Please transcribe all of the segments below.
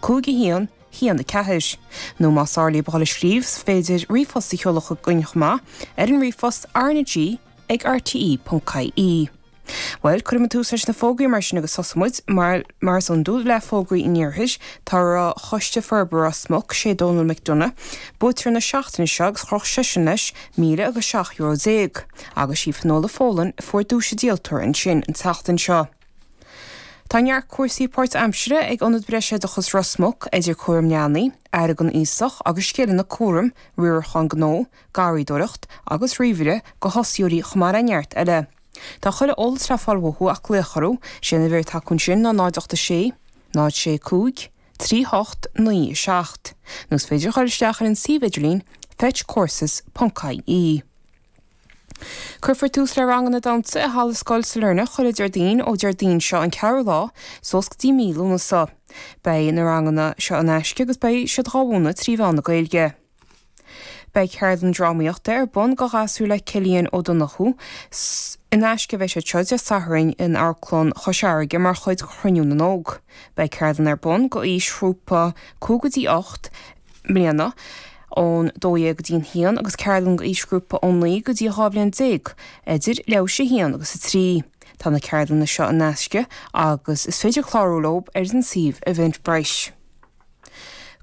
5 1 1 4 Nó más fearr libh dul ag scríobh, is féidir ríomhphost a sheoladh chugainn chomh maith ar an ríomhphost RnaG ag RTE.ie. Bhuel, cuirfimid tús leis na fógraí mar sin agus tosóidh muid, mar is iondúil, le fógraí an iarthair. Draw Choiste Forbartha Ros Muc, sé Donal McDonagh buaiteoir na seachtaine seo agus chroch seisean leis míle agus seacht euro déag. Agus sí Finola Folan a fuair duais an díoltóra ansin an tseachtain seo. Tá neart cúrsaí páirtaimsire ag Ionad Breisoideachais Ros Muc, idir cúram leanaí, aire don aosach agus scileanna cúraim, riarachán gnó, garraídóireacht agus ríomhaire do thosaitheoirí chomh maith le neart eile. Tá chuile eolas le fáil uathu ach glaoch orthu, is é an uimhir atá acu ansin ná 08 6 0 6 5 3 8 9 7 nó is féidir a chur isteach ar an suíomh idirlín fetchcourses.ie. Cuirfear tús le ranganna damhsa i Halla Scoil Sailearna chuile Déardaoin ó Déardaoin seo an 4ú lá suas go dtí mí Lúnasa. Beidh na ranganna seo in aisce agus beidh siad dhá mhúineadh trí mheán na Gaeilge. Beidh ceardlann drámaíochta ar bun go ghasúir le Cillian Ó Donnchú in aisce a bheidh siad seo Dé Sathairn in Amharclann Chois Fharraige mar chuid de Chruinniú na nÓg. Beidh ceardlann ar bun go aoisghrúpa 5 go dtí 8 mbliana, ón dó dhéag go dtí an haon, agus ceardlann d'aoisghrúpa ón naoi go dtí a dhá bhliain déag, idir leathuair tar éis a haon agus a trí. Tá na ceardlanna seo in aisce agus is féidir clárú leo ar an suíomh Eventbrite.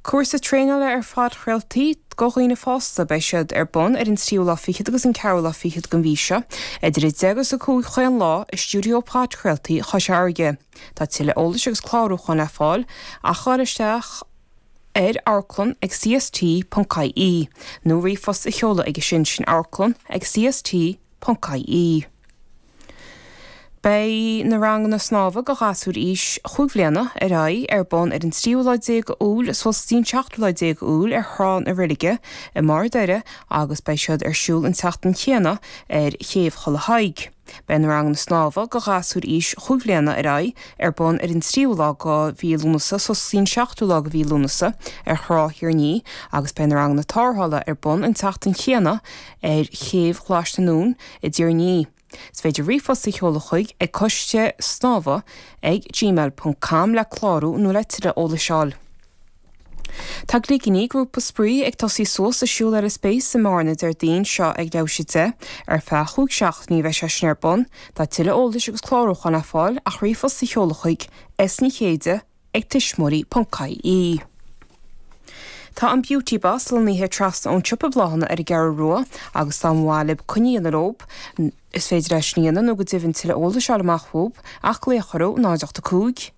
Cúrsa Traenála ar Phodchraoltaí do Dhaoine Fásta, Beidh siad ar bun ar an tríú lá fichead agus an ceathrú lá fichead den mhí seo, idir 10 agus 5 chaon lá, i stiúideo podchraoltaí Chois Fharraige. Tá tuilleadh eolais agus clárúcháin le fáil ach gabháil isteach. ar amharclann ag CST ponc IE nó ríomhphost a sheoladh aige sin sin amharclann ag CST ponc IE. Beidh na ranganna snámha do ghasúir aois chúig bhliana ar aghaidh ar bun ar an tríú lá déag Iúil suas dtí an seachtú lá déag Iúil ar thrá na reilige i mBarr an Doire agus beidh siad ar siúl an tseachtain chéanna ar Chéibh Chaladh Thaidhg. Beidh na ranganna snámha do ghasúir aois chúig bhliana ar aghaidh ar bun ar an tríú lá go mhí Lúnasa suas go dtí an seachtú lá go mhí Lúnasa ar Thrá Thír an Fhia agus beidh na ranganna tárrthála ar bun an tseachtain chéanna ar chéibh Ghlais na nUan i dTír an Fhia. Is féidir ríomhphost a sheoladh chuig ag coiste snámha ag gmail ponc com le clárú nó le tuilleadh eolais a fháil. Tá Gligíní, grúpa spraoi, ag tosaí suas a siúl ar an Space i mBearna Déardaoin seo ag leathuair tar éis a deich. Ar feadh chúig seachtainí a bheidh sé sin ar bun. Tá tuilleadh eolais agus clárúcháin le fáil ach ríomhphost a sheoladh chuig, S. Ní Chéide, ag tuismitheoirí.ie. Tá an Beauty Boss lonnaithe trasna ón siopa bláthanna ar an gCeathrú Rua agus dá mba mhaith libh coinne a dhéanamh leo, is féidir é sin a dhéanamh nó go deimhin tuilleadh eolais a fháil amach fúthu ach glaoch orthu, 085.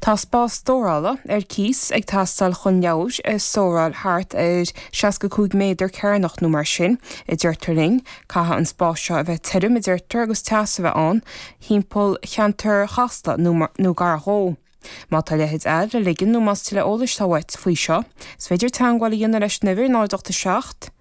Tá spás stórála ar cíos ag teastáil chun leabhair a stóráil thart ar 65 méadar cearnach nó mar sin, a deirtear linn. Caithfidh an spás seo a bheith tirim, a deirtear, agus teas a bheith ann thimpeall cheantar Chasla nó gar dhó. Má tá a leithéid a le ligean nó más tuilleadh eolais atá uait faoi seo, is féidir teagmháil a dhéanamh leis an uimhir 087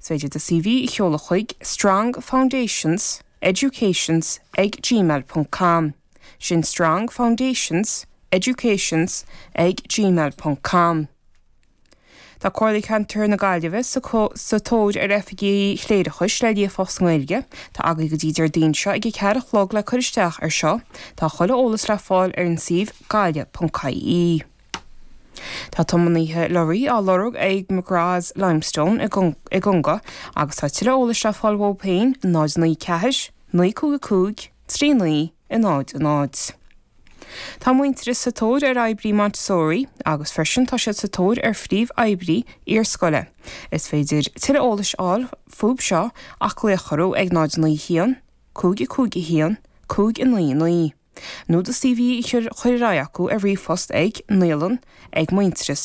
Is féidir do CV a sheoladh chuig, Strong Foundations, Educations ag gmail ponc com, sin Strong Foundations, Educations ag gmail ponc com. Tá Comhairle Chontae na Gaillimhe sa tóir ar oifigigh chléireachais le líofacht sa nGaeilge. Tá agaibh go dtí Déardaoin seo ag a ceathair a chlog le cur isteach ar seo. Tá tuilleadh eolais le fáil ar an suíomh gaillimh.ie. Tá tiománaithe lorraí á lorg ag McGrath's Limestone i gConga agus tá tuilleadh eolais le fáil ó Payne 0940 955 39 0 0. Tá Muintearas sa tóir ar oibrí Montessori agus freisin tá siad sa tóir ar phríomhoibrí iarscoile. Is féidir tuilleadh eolais a fháil fúthu seo ach glaoch orthu ag 0901 551 599. Nó do CV a chur ar aghaidh acu ar ríomhphost ag, Naíolann, ag Muintearas.